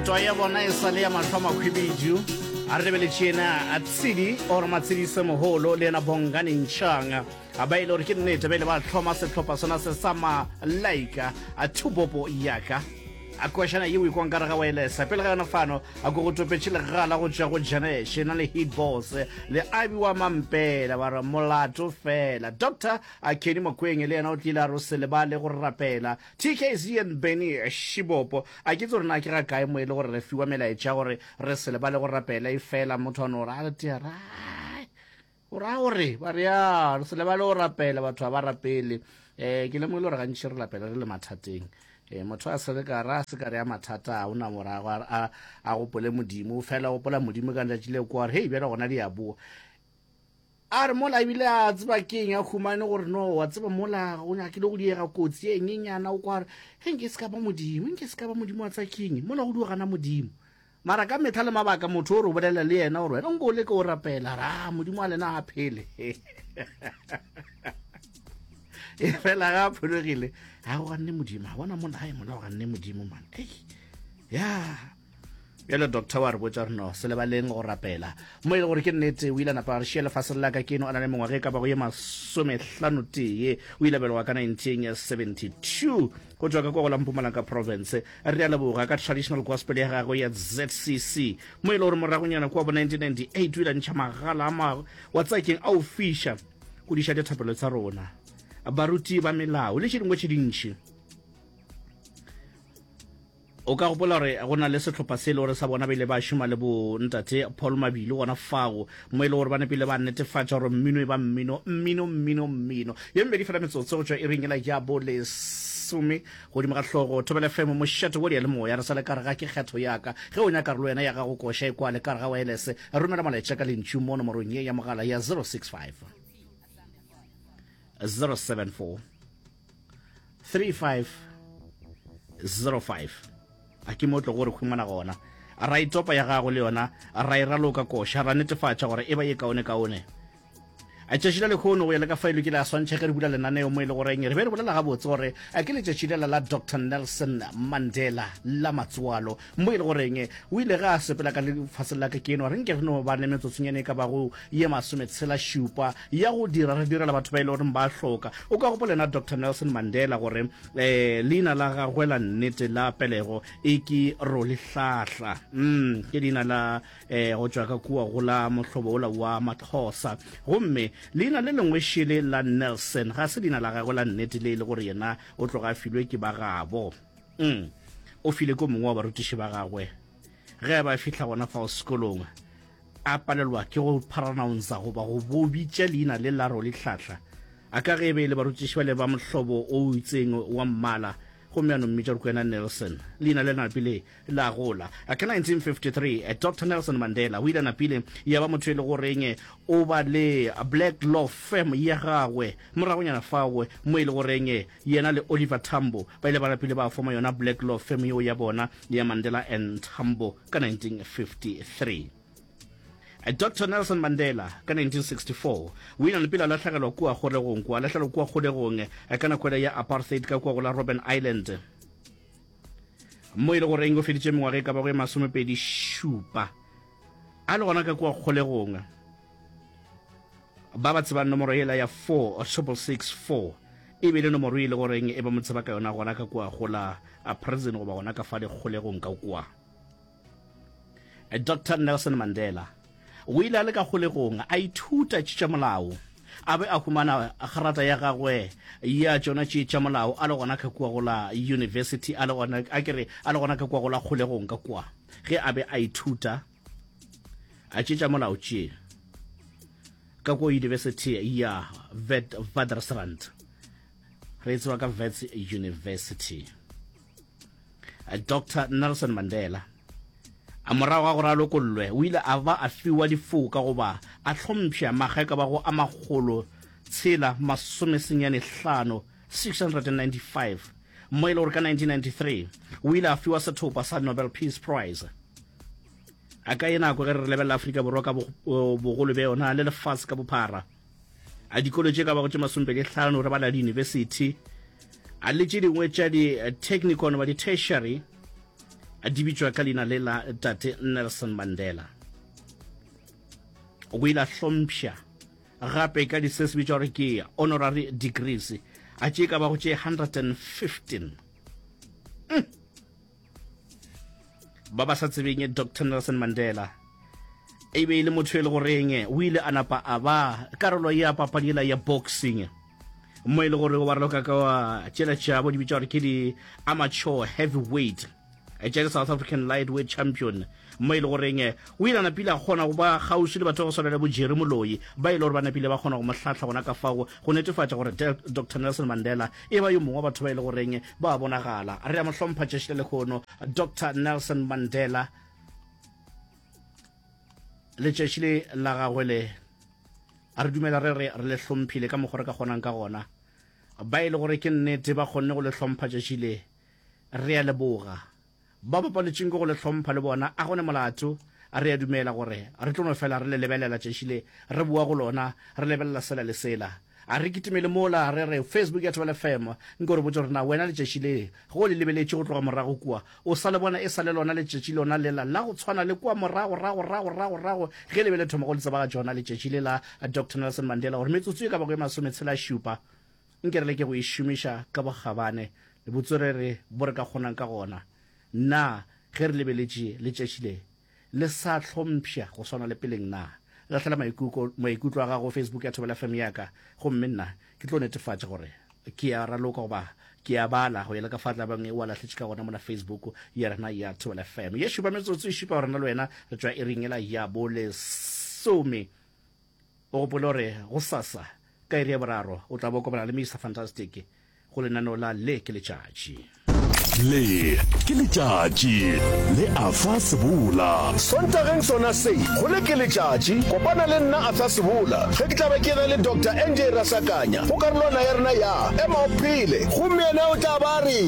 Twa ya bona e sale ya mahlo makhwibidu a re lebeletše yena a tshidi or matshidise moholo le yena bongane ntšhang a ba ile gore ke nnete ba ile ba hloma sehlopha sona se sa ma laika a thubopo yaka a kwešana ye o ikwang ka re ga waelesa pele ga yona fano a ko go topetše legala go tšwa go janeshe na le heat boss le abi wa mampela ba re molato fela doctor a kedi mokweng le yena o tlile a ro se lebale go rapela Tkz and Benny Shibopo, a ke itse gore na ke ga kae mo e le gore re fiwa melaetša gore re se lebale go rapela efela motho a no ra re tea rae o ra gore ba re ya re se lebale go rapela batho ga ba rapele eh ke lemogile gore gantši re lapela re le mathateng eh motho a se re ka ra se ka re ya mathata a ona morago a, a, a gopole modimo o fela gopola modimo ka letšatši le kwa gore hei bjale gona di a boa A re mola ebile a tseba ke eng a humane gore no wa tseba mola ga o nyakile go diega kotsi e nyenyana o kwa re ge nke se ka ba modimo nke se ka ba modimo wa tsa king mola go duogana modimo mara ka metha le mabaka motho o re o bolela le yena gore wena nko o le ke o rapela ra ah, modimo wa lena a phele e fela ga a phologile ga go ganne modimo a bona molae mola go ganne modimo mane ya bjale doctor wa re botša reno se lebaleng go rapela mo e le gore ke nnete o ile a napa a re šia lefaseng la ka ke no a na le mengwaga e ka bago ye masomehlano tee o ile belegwa ka 1972 go tswa ka kwa go la mpumalaka province re a leboga ka traditional gospel ya gagwe ya zcc mo e le gore moragonyana kua bo 1998 o ile a ntšha magala a mago wa tsakeng a o fiša go diša dithapelo tsa rona baruti ba melao le tše dingwe tše dintšhi O ka gopola gore go na le sehlopha se e le gore sa bona ba ile ba šoma le bo Ntate Paul Mabilo gona fao, mo e le gore ba nepile ba netefatša gore mmino e ba mmino, mmino, mmino, mmino. Ye mebedi fela metsotso go tšwa iring yela ya bo lesome. Godimo ga hlogo, Thobela FM, mošate wo diyalemoya, re sa le ka re ga ke kgetho ya ka. Ge o nyaka re le wena ya gago koša e kwale ka re ga waelese, romela molaetša ka lentšu mo nomorong ye ya mogala ya 065 074 3505 a ke mo tlo gore humana gona ra itopa ya gago le yona ra e raloka koša ra netefatša gore e ba ye kaone kaone a tšatši la lekgono go ya le ka faelo ke le a swantšha ge re bula lenaneo mo e le goreng re be re bolela gabotse gore a ke letšatši lela la dr nelson mandela la matsoalo Mbo e le goreng? O ile ge a sepela ka lefaseng la ka ke enwa, re nke re no ba ne metsotsonyane e ka bago ye masometshela šupa ya go dira, re direla batho ba e le goreng ba hloka. O ka gopola yena Doctor Nelson Mandela gore um leina la gagwe la nnete la pelego e ke Rolihlahla. Um ke leina la um go tšwa ka kua go la mohlobo ola wa Maxhosa. Gomme leina le lengwe šele la Nelson ga se leina la gagwe la nnete le e le gore yena o tloga a filwe ke ba gabo. mm. o file ko mongwe wa barutiši ba gagwe ge a ba fihla gona fao sekolong a palelwa ke go paranounsa goba go bobitša leina le laro le tlhahla a ka ge e be e le barutiši ba le ba mohlobo o itseng wa mmala gomme a nommitša gore kwena nelson leina le nape le la gola. Ka 1953, Doctor Nelson Mandela o ile a napile ya ba motho e le goreng o ba le Black Law Firm ya gagwe. Moragonyana fao mo e le goreng yena le Oliver Tambo ba ile ba napile ba foma yona Black Law Firm yeo ya bona ya Mandela and Tambo ka 1953. Doctor Nelson Mandela ka 1964 o ile a napile a lahlegelwa kua kgolegong kua, a lahlegelwa kua kgolegong ka nako ya apartheid ka kua go la Robben Island. mo e le goreng o feditše mengwaga e ka bago e masomepedi šupa a le gona ka kua kgolegong ba ba tsebang nomoro ela ya 4 or triple six four e be le nomoro e le goreng e ba mo tseba ka yona gona ka kua gola a prison goba gona ka fa dikgolegong ka kua Dr. Nelson Mandela o ile a le ka kgolegong a ithuta tše tša molao a be a humana gerata ya gagwe ya tšona tše tša molao a le gona ka kua go la university a le gona a kere a le gona ka kua go la kgolegong ka kua ge a be a ithuta a tše tša molao tše ka kua university ya Witwatersrand re e tseba ka Wits University dr nelson mandela a morago ga gore a lokollwe o ile a ba a fiwa difoka goba a hlompšha makga ka bago a magolo tshela masomesenyane hlano 695 mo e le gore ka 1993 o ile a fiwa sethopa sa nobel peace prize a ka e nako ge re lebelela afrika borwa ka bogolo bja yona le lefatshe ka bophara a dikolo tše ka bago tše masompedi hlano re bala diyunibesithi a le tše dingwe tša di-technical goba di-tertiary a di bitšwa ka leina le la tate nelson mandela o ile a hlompša gape ka di se se bitšwa gore ke honorary degrees a tše ka bago tše 115 mm. ba ba sa tsebeng dr nelson mandela e be e le motho e le goreng o ile a napa a ba karolo ya papadi ela ya boxing mo e le gore wa raloka ka wa tšeletša bo di bitša gore ke di-amateur heavyweight tša di-south african lightweight champion mo e le goreng o ile a napile a kgona go ba kgauswi le batho ba go swana le bo Jerry Moloi ba e le gore ba napile ba kgona go mo hlahla gona ka fao go netefatša gore Dr Nelson Mandela e ba yo mongwe wa batho ba e le goreng ba bonagala. Re a mo hlompha tšešo le lehono Dr Nelson Mandela le tšešo la gagwe le a re dumela re re re le hlomphile ka mokgwa re ka kgonang ka gona ba e le gore ke nnete ba kgonne go le hlompha tšešo le re a leboga. bao ba palwetšeng ke go le hlompha le bona a go ne molato. A re a dumela gore re tlo no fela re le lebelela tšatši le re boa go lona, re lebelela sela le sela. A re kitimele mola re re, Facebook ya Thobela FM, nko re botše gore na wena letšatši le ge o le lebeletše go tloga morago kua, o sa le bona e sa le lona letšatši lona lela la go tshwana le kua moragoragoragoragorago ge le be le thoma go le tsebagatša yona letšatši le la Doctor Nelson Mandela gore metsotso e ka bago e masometshela-šupa? Nke re leke go e šomiša ka bokgabane le botswerere bo re ka kgonang ka gona. Na ge re lebeletše letšatši le le sa hlompšha go swana le peleng, na lahlela maikuko, maikutlo a gago go Facebook ya Thobela FM ya ka, gomme nna ke tlo netefatša gore ke a raloka goba ke a bala go ya le ka fa tla bang e o a lahletše ka gona mola Facebook ya rena ya Thobela FM. Ye šupa metsotso e šupa gore nna le wena re tšwa iring yela ya bolesome. O gopole gore gosasa ka iri ya boraro o tla bo kopana le Mister Fantastic go lenaneo la Le ke Letšatši. Le ke Letšatši le Arthur Sebola. Sontageng sona se, go Le ke Letšatši, kopana le nna Arthur Sebola ge ke tla be ke ge le Doctor NJ Rasakanya go karolwana ya rena ya Ema o Phele. Gomme yena o tla ba a re,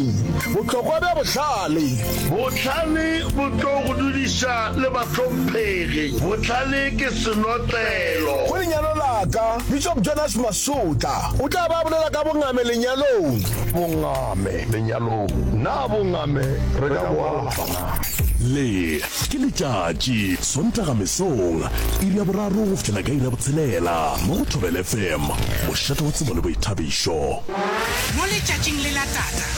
Bohlokwa bja Bohlale. Bohlale bo tlo go dudiša le ba tlo phela. Bohlale ke senotlelo. Go lenyalo la ka, Bishop Jonas Masotla o tla ba a bolela ka bongame lenyalong. Bongame lenyalong, na bongame re ka bo alafa na? Le, ke letšatši, Sontaga mesong, iri ya boraro go fihlela ka iri ya botshelela, mo go Thobela FM, mošate wa tsebo le boithabišo. Mo letšatšing le la tata.